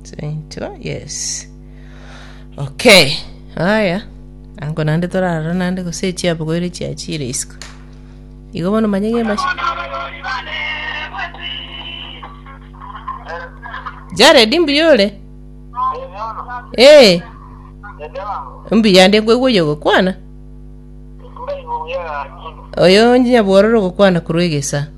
Saintwa, yes. Okay. Aya. Ango nande torara nande gose echiapo goire chiachire isiko. Igo bono manye ng'embashi. Jared mbuyore. Eh, mbuya ndi kwegwoyo gokwana. Oyo nyabwororo gokwana kurwegesa.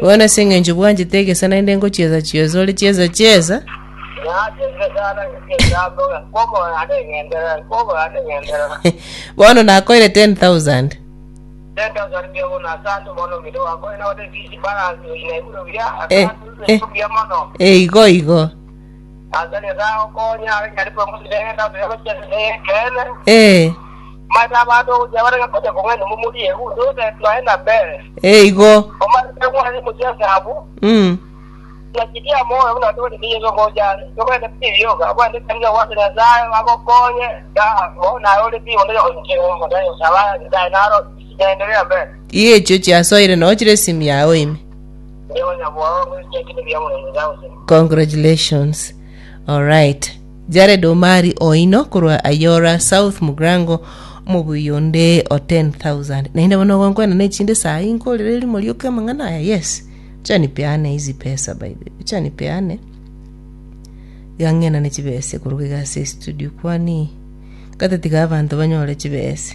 Bono ase engencho bwanchete egesa naende ngochiesa chiosa ore chiesa chiesa. Bono nakoire 10,000. Eh, eh, eh, igo igo. Ee. Ee, igo. Mm. Iga echio chiasoire noo chire esimi yago ime. Nigo nyabwao goika ekero ebiya Omonene biagosire. Congratulations. Alright. Jared Omari oino korwa Ayora South Mugrango omobuyi onde o 10,000. Naende bono ogonkwena na echinde saa hii nkorere erimo rioka amang'ana aya yes. Chanipeane hizi pesa by the way. Chanipeane. Iga ng'enane chibesa ekoruga iga ase studio kwani. Gata tiga abanto banyore chibesa.